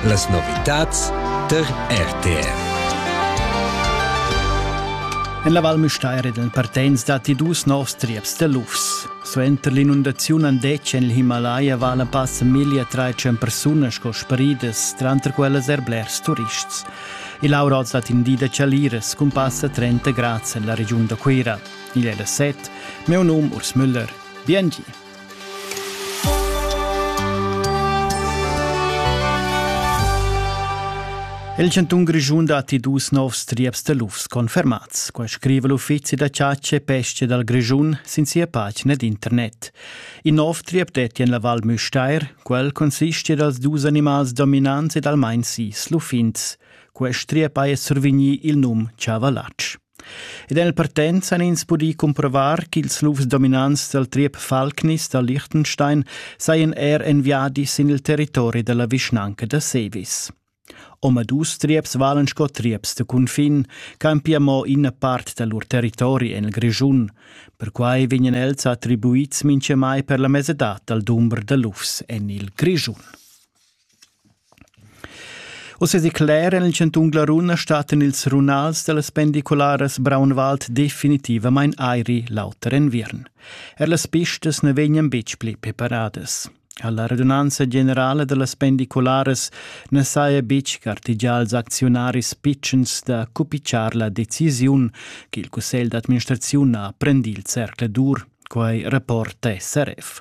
Las novitads tar RTR. En la Val Müstair ed partenz datti dus novs trieps da lufs. Suenter l'inundaziun an detg en il Himalaya vala passa miglia trais persunas sco sparidas, tranter quellas er blers turists. Il auroz dat in di da chaliras cun passa 30 grads en la regiun da Cuira. Igl è la set, meu num Urs Müller. Bien Il chantun Grischun datti dus novs trieps da lufs confermats. Quai scriva l'uffizi da chatscha e pesca dal Grischun sin sia pagina d'internet. In nov triep detti en la Val Müstair. Quel consiste dals dus animals dominants ed almain sis luffins. Quest triep ha survigni il num Chavallatsch. Ed en partenz han ins pudì cumprovar ch'ils lufs dominants dal triep Falknis da Liechtenstein sajan er en viadi sin il territori da la vischnanca da Sevis. Omadus trieps valan sco trieps da cunfin, campia mo ina part da lur territori en il Grischun. Perquai vegnan els attribuids mintgamai per la mesadad dal dumber da lufs en il Grischun. Uss declera en il chantun Glaruna stattan ils runals da las pendicularas Braunwald definitivamain airi l'auter enviern. Er las pistas na vegnan betg pli preparadas. La radunanza generala da las pendicularas na saja betg gartegià als acziunaris pitschens da cupitschar la decisiun che il cussegl d'administraziun ha prendì il zercladur, quai rapporta SRF.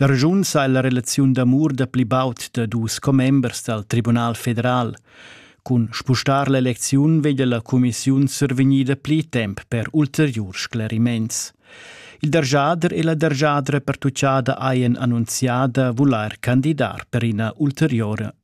La regiun sa ella relaziun d'amur da pli baud da dus commembers dal Tribunal federal. Cun spustar l'elecziun veglia la cumissiun survegnida pli temp per ulteriurs scleriments. Il dargiader e la dargiadra pertuccada hajan annunziada vulair candidar per ina ulteriore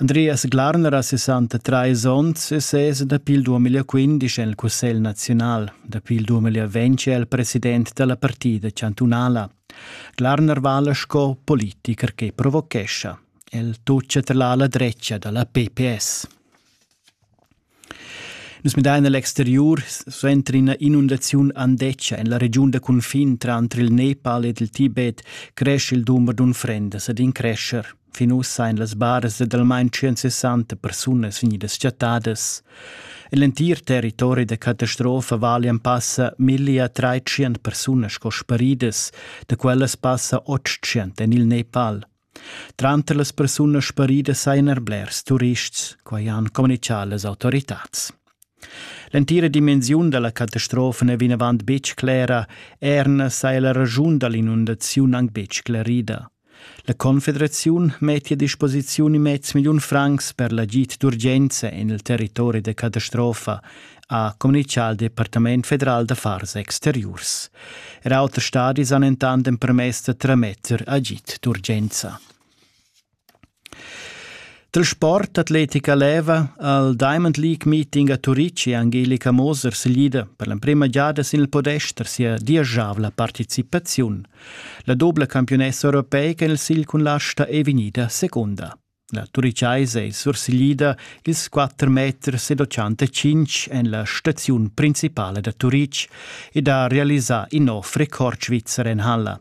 Andreas Glarner ha 63 onns e ses dapi il 2015 en il Cussegl naziunal. Dapi il 2020 è el president da la partida chantunala. Glarner vala sco politicher che provochescha. El toccia tra la dretga da la PPS. Nus midain a l'exteriur suenter ina inundaziun andetga en la regiun da cunfin tranter il Nepal ed il Tibet crescha il dumber d'unfrendas ed in crescher. Fin ussa èn las baras da almain 160 persunas vegnidas chattadas. En l'entir territori da catastrofa valian passa millia trais persunas sco sparidas, da quellas passa 800 en il Nepal. Tranter las persunas sparidas sajan er blers turists, quai han communitgà las autoritads. L'entira dimensiun da la catastrofa n'è vinavant betg clera, erna saja la raschun da l'inundaziun anc betg sclerida. La Confederaziun mettia a disposiziun in mez milliun francs per l'agid d'urgenza en il territori da catastrofa ha communitgà al Departament federal d'affars exteriurs. Er auter stadis han entant empermess da trametter agid d'urgenza. Dal sport atletica leva al Diamond League meeting a Turici Angelika Moser seglida per l'emprima giada sin il podest sia dieschavla participaziun. La doble campionessa europeica in il sigl cun l'asta è vegnida secunda. La Turichaisa ei sursiglida ils quatter meters ed otschantacinc en la staziun principala da Turitg ed ha realisà in nov record svizzer en halla.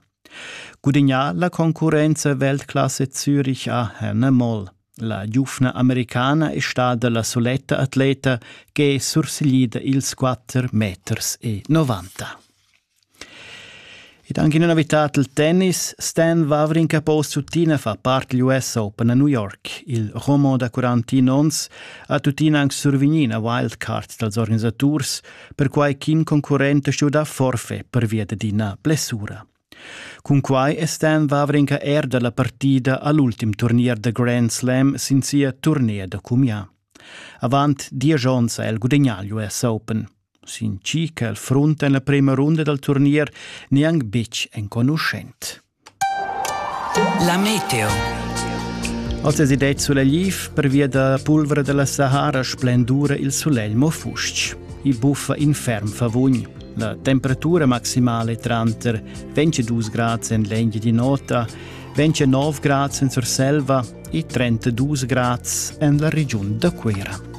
Gudignà la concurrenza Weltklasse Zürich a Hannah Moll. La giuvna americana è stada la soletta atleta che è sursiglida ils 4 meters e 90. Ed anche in abitat il tennis, Stan Vavrin Capoz tuttina fa part degl US Open a New York. Il romo da 41 onns ha tuttina anche survigni a wildcard dals organisaturs, perquai ch'in concurrent ha stuì dar forfè per via d'ina blessura. Cun quai è Stan Vavrinka er da la partida all'ultim turnier da Grand Slam sin sia turnea da cumià. Avant diesch onns ha el gudagnà l'US Open. Sin chi ch'el frunta en la prema runda dal turnier neanc betg enconuschent. La meteo. Oz es id sulegl liv pervia da pulvra da la Sahara splendura il sulegl mo fustg. I buffa in ferm favugn. La temperatura maximale tranter 22 grads en l'engi di nota, 29 grads en Surselva e 32 grads en la regiun da Cuira.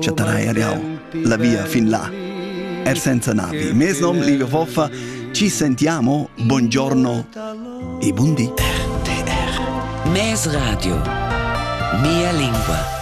chattanai er jau la via fin là. Er senza navi. Mes nom Livio Foffa. Ci sentiamo, buongiorno e buondì. RTR. Mes radio. Mia lingua.